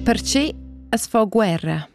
Perche as fa guerra?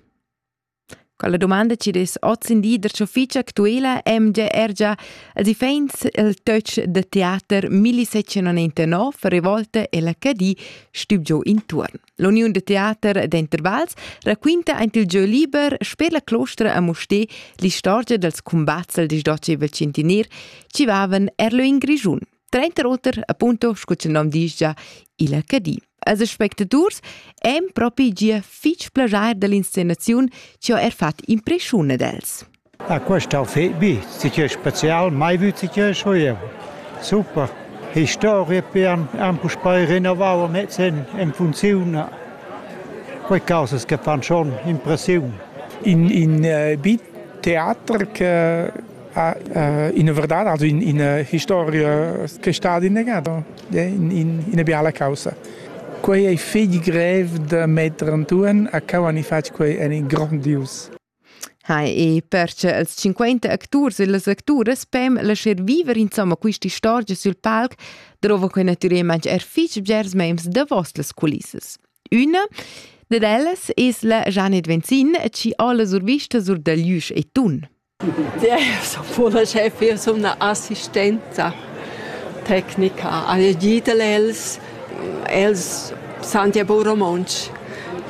Quella domanda ci des oz in di der ciofficia actuela MGR già als iffaints il töch da teater 1799 Revolte e la Cadì stüb giò intuorn. L'Uniun de Teater d'Intervals raquinta aint il giö liber sper la clostra a Mustè l'istorgia dels cumbats del 18 centener ci vaven er lö in Grischun. Trenter oter appunto scu cha nom disch già il HD. Als spectaturs èn propi gia fich plajair dall'inscenaziun chi ho er fat impreschiun ad els. Ah, quest ha fet bi, sicher spezial, mai vüt sicher scho eu. Super. Historia pian han puspei rinnovau mez en, en funziun. Quei causas che fan schon impressiun. In, in uh, bit teater che ina verdad, also in, ina historia che è stata innegata, in, in, ina biala causa. Quei ei fetg grev da metter antuan a cau ani fatg quei ein grandius. Hai e perche els 50 acturs e las acturas pem lascher viver insomma questa storia sul palc drova quei naturalmente er fitg bgers mems da vostras culissas. Una ded ellas es la Janet Venzin, ci alla survista sur da Lüsch e Tun. so pula chef io sun una assistenza tecnica a ditel els els san ja bu romontsch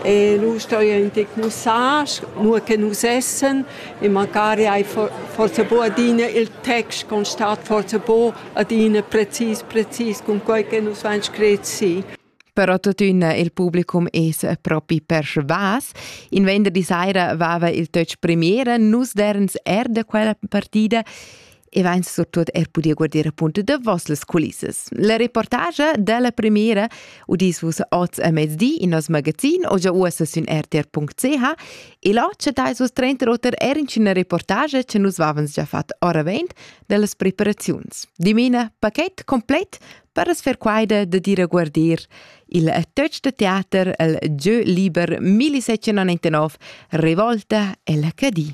e nu sto io in tic mussage nur che nus essen e magari hai forse bu adina il text constat forse bu adina precis precis cun quei che nus vain scret si però tuttina il publicum es propi persvas. In venderdi saira vava il töch premiera, nus derens er da quella partida e vain surtut er pudia guardir appunto da vossas culissas. La reportagia della premiera udis vus oz a mezdi in nos magazin o già uossa sün rtr.ch e là chattais vus trenta oter er in una reportagia che nus vavans già fat ora vent dellas preparaziuns. Dimena paket complet per as fer quaida da dir a guardir il touch da teater el Jeu liber 1799 Revolta e la Cadì.